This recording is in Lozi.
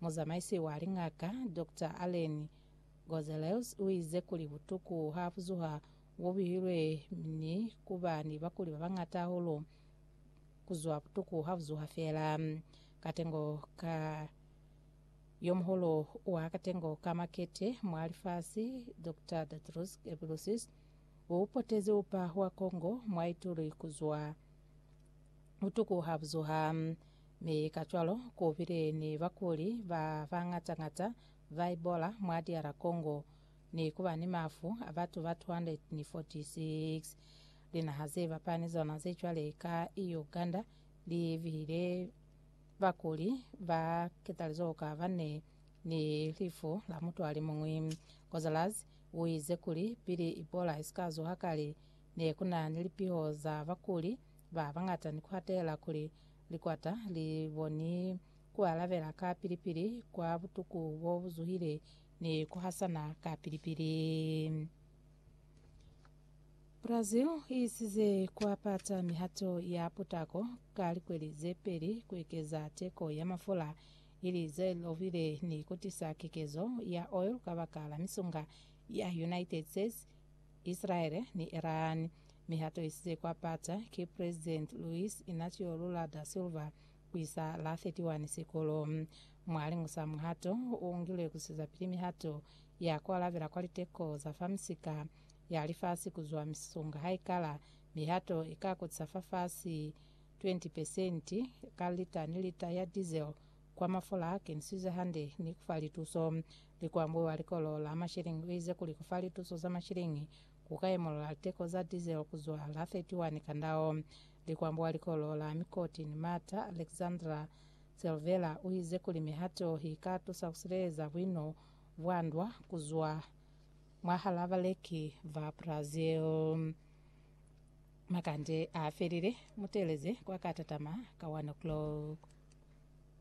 Muzamaisi wa liñaka, Doctor Allen Gonzalez, u ize kuli butuku ha buzuha bo bihilwe ni ku ba ni bakuli ba bañata hahulu ku zwa butuku ha buzuha fela. Katengo ka yo muhulu wa katengo ka makete mwa lifasi, Doctor Tedros Ghebreyesus, u potezi upa wa Congo mwa ituli ku zwa. Butuku ha bu zuha, mi kacwalo ku bile ni bakuli ba bañata-ñata ba Ebola mwa DR Congo, ni ku ba ni mafu a batu ba 246. Linaha ze bapani zona ze cwale ka Uganda li bihile bakuli ba ketalizoho ka bane ni lifu la mutu a li muñwi. Gonzalez u ize kuli pili Ebola i si ka zuha kale, ne ku na ni lipiho za bakuli Ba bañata ni kuatela kuli likwata li boni kualabela ka pili-pili kwa butuku bo buzuhile ni kuhasana ka pili-pili. Brazil iisize kuapata mihato ya putako ka likweli ze peli kuekeza teko ya mafula ili ze lovile ni kutisa kekezo ya oil kabakala misunga ya United States, Isilaele ni Irani, mi ha toisize kwa pata ki President Luiz Inacio Lula da Silva ku isa la 31 Sikolo. Mwa liñusa muhato u ngilwe ku sizapili mihato ya ku alabela kwa liteko za fa misika ya lifasi ku zwa misisunga haikala mihato i ka kutisa fafasi 20 pesenti ka lita ni lita ya diesel Kwa mafola a kenisize hande ni ku fa lituso. Likwambo wa likolo la mashilingi u ize kuli ku fa lituso za mashilingi ku ka imolola liteko za diesel ku zwa la 31 ka ndao. Likwambo wa likolo la mikoti ni mata Alexandra Silvera u ize kuli mihato i ka tusa ku sileleza buino bwa ndwa ku zwa mwahal'a baleki ba Brazil. Makande a felile, mu teeleze kwa ka tatama ka 1 o'clock.